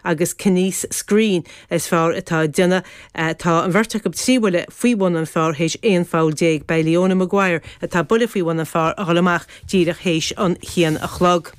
agus Kines Screen is fearr atá ag déanamh. Tá an bheirt acu trí bhuille faoi bhun an phar théis 11 pholl Beidh Leona Maguire atá buille faoi bhun an phar ag dhul amach díreach théis a haon a chlog.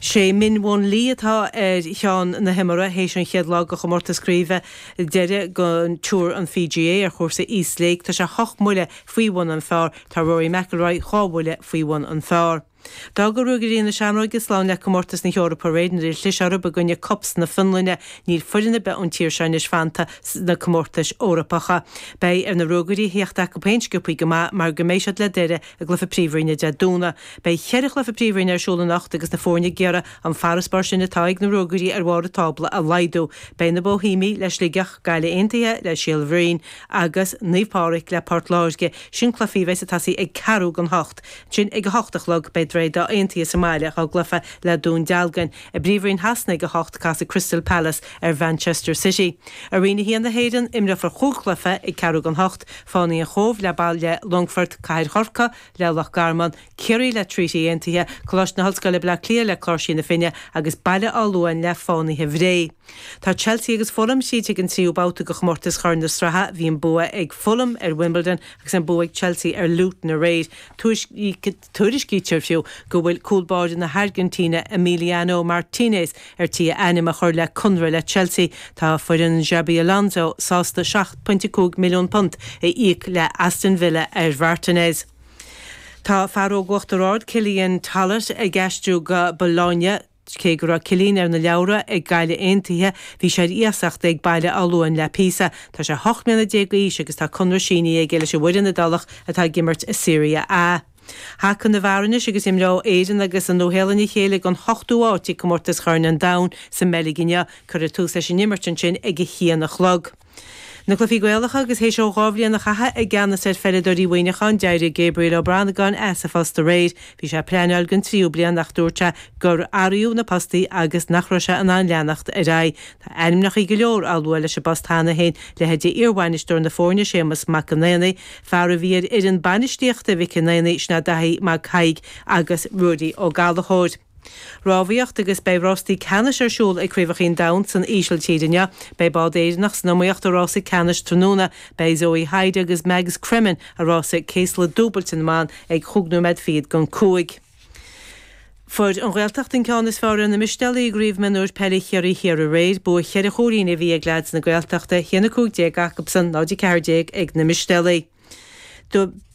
Sé Min Woo Lee atá ar cheann na himeartha théis an chéad lá de chomórtas craoibhe deiridh Tour an PGA ar chúrsa East Lake Tá sé hocht mbuille faoi bhun an phar Tá Rory McIlroy dhá bhuille faoi bhun an phar. D'fhág Ruagairí na Seamróige slán le comórtas na hEorpa aréir nuair a chlis orthu i gcoinne KuPS na Fionlainne. Níl foireann ar bith ón tír seo anois fanta sna comórtais Eorpacha. Beidh ar na Ruagairí a theacht acu féin sciopthaí go maith mar go mbeidh siad le Doire i gcluiche Príomhroinne Dé Domhnaigh. Beidh ceithre chluiche Príomhroinne ar siúl anocht agus na foirne ag iarraidh an farasbarr sin atá ag na Ruagairí ar bharr an tábla a laghdú. Beidh na Bóihéamaigh le Sligeach, Gaillimh Aontaithe le Síol Bhroin agus Naomh Pádraig le Port Láirge. Sin cluichí a bheidh ag tosaí ag ceathrú gan hocht. Ansin ag a hocht a chlog beidh Droichead Átha Aontaithe sa mbaile dhá gcluiche le Dún Dealgan. I bPríomhroinn Shasana ag a hocht casfaidh Crystal Palace ar Mhanchester City. I Roinn a haon na hÉireann imreofar chúig chluiche ag ceathrú gan hocht, Fánaithe an Chóbh le Baile Longfoirt, Cathair Chorcaí le Loch Garman, Ciarraí le Treaty Aontaithe, Coláiste na hOllscoile Bleá Cliath le Cláirsigh na Finne agus Baile Átha Luain le Fánaithe Bhré. Tá Chelsea agus Fulham tríd ag an tríú babhta de chomórtas Chorn na Sraithe. Bhí an bua ag Fulham ar Wimbledon agus an bua ag Chelsea ar Luton aréir. Tuairiscítear fiú go bhfuil cúlbáire na hAirgintíne, Emiliano Martínez, ar tí a ainm a chur le conradh le Chelsea. Tá foireann Xabi Alonso sásta £7.5 milliún a íoc le Aston Villa ar Mhartinez. Tá fear óg Uachtar Ard, Cillian Tollett, ag aistriú go Bologna. Cé go raibh Cillian ar na leabhra ag Gaillimh Aontaithe, bhí sé ar iasacht ag Baile Átha Luain le píosa. Tá sé hocht mbliana déag d'aois agus tá conradh sínithe aige leis an bhfoireann Iodálach atá ag imirt i Serie A. Haca na bhfear anois agus imreoidh Éirinn agus an Nua-Shéalainn a chéile don hochtú háit ag Comórtas Choirn an Domhain sa mBeilg inniu. Cuirfear tús leis an imirt ansin ag a haon a chlog. Na Cluichí Gaelacha, Agus théis dó dhá bhliain a chaitheamh i gceannas ar pheileadóirí Mhuineacháin, d'éirigh Gabriel Ó Banagáin as a phost aréir. Bhí sé ag pleineáil don tríú bliain ach dúirt sé gur athraíodh na postaí agus nach raibh sé in ann leanacht ar aghaidh. Tá ainmneachaí go leor á lua leis an bpost cheana féin, leithéidí iarbhainisteoir na foirne Séamus Mac an Aonaigh, fear a bhí ar fhoireann bainistíochta Mhic an Aonaigh, sin é Daithí Mag Thaidhg agus Ruairí Ó Gallachóir. Rámhaíocht agus beidh rástaí ceannais ar siúl ag Craobhacha an Domhain san Ísiltír inniu. Beidh bád Éireannach san iomaíocht i rása ceannais tráthnóna. Beidh Zoe Hyde agus Mags Cremen i rása céasla dúbailte na mban ag chúig nóiméad fichead gan cúig. Fuair An Ghaeltacht an ceann is fearr ar na Mistéalaigh i gCraobh Mionúir Peile Chiarraí Thiar aréir. Bua cheithre chúilín a bhí ag leads na Gaeltachta, 1 15 acubsan, 0 14 ag na Mistéalaigh.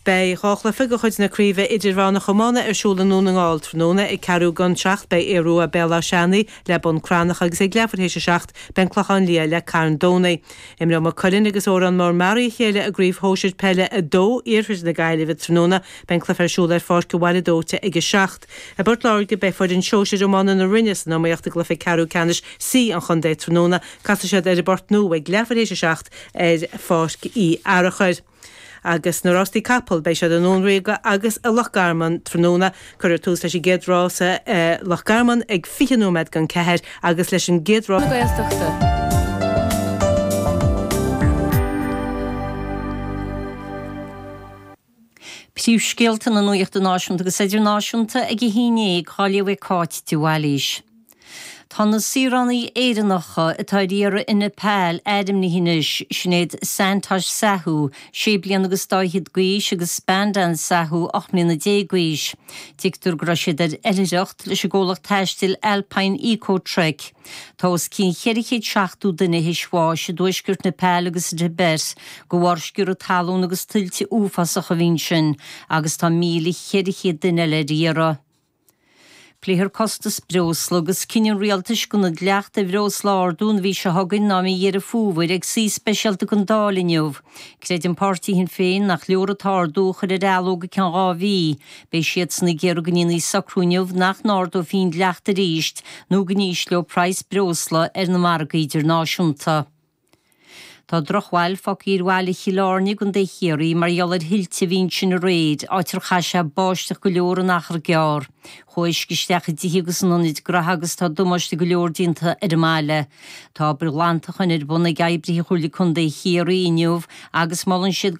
Beidh dhá chluiche de chuid na Craoibhe Idirmheánach Iomána ar siúl i nDún na nGall tráthnóna. Ag ceathrú don seacht beidh Aodh Ruadh Béal Átha Seanaidh le Bun Cranncha agus ag leathuair théis a seacht beidh An Clochán Liath le Carn Domhnaigh. Imreoidh Maigh Cuilinn agus Órán Mór-Meáraí a chéile i gCraobh Shóisir Peile 2 Iarthair na Gaillimhe tráthnóna. Beidh an cluiche ar siúl ar Pháirc an Bhaile Dóite ag a seacht. I bPort Láirge beidh foireann Shóisir Iomána na Rinne san iomaíocht i gcluiche ceathrú ceannais C an chontae tráthnóna. Casfaidh siad ar an bPort Nua ag leathuair théis a seacht. ar Pháirc Uí Fhearachair agus na rástaí capall. Beidh siad i nDún Ríoga agus i Loch Garman tráthnóna. Cuirfear tús leis an gcéad rása i Loch Garman ag fiche nóiméad don ceathair agus leis an gcéad rás. Príomhscéalta na Nuachta Náisiúnta agus Idirnáisiúnta ag a hAon Déag, dá léamh ag Cáit de Bhailís. Tá na saoránaigh Éireannacha atá ar iarraidh i Nepal ainmnithe anois, Sinéad Santosh Sahu, sé bliana agus dá fhichead d'aois, agus Spandan Sahu, ocht mbliana déag d'aois. Tuigtear go raibh siad ar oilithreacht leis an gcomhlacht taistil Alpine Eco Trek. Tá os cionn cheithre chéad seachtó duine théis bháis i dtuaisceart Nepal agus sa Tibet de bharr sciorradh talún agus tuilte uafásacha a bhí ansin agus tá míle cheithre chéad duine eile ar iarraidh. Pléifear costas breosla agus cinneadh an rialtais gan an dleacht ar bhreosla a ardú an mhí seo chugainn ná mí Dheireadh Fómhair ag suí speisialta den Dáil inniu. Creideann Páirtí Shinn Féin nach leor an t-ardú a chur ar athló go ceann dhá mhí. Beidh siadsan ag iarraidh go ndéanfaí socrú inniu nach n-ardófaí an dleacht arís nó go n-ísleodh praghas breosla ar na margaí idirnáisiúnta. Tá drochbhail fágtha ar bhaile Chill Airne i gContae Chiarraí mar gheall ar thuilte a bhí ansin aréir, áit ar chaith sé báisteach go leor in achar gearr. Chuaigh uisce isteach i dtithe agus in ionaid gnaithe agus tá damáiste go leor déanta ar an mbaile. Tá obair ghlantacháin ar bun ag oibrithe Chomhairle Contae Chiarraí inniu agus molann siad go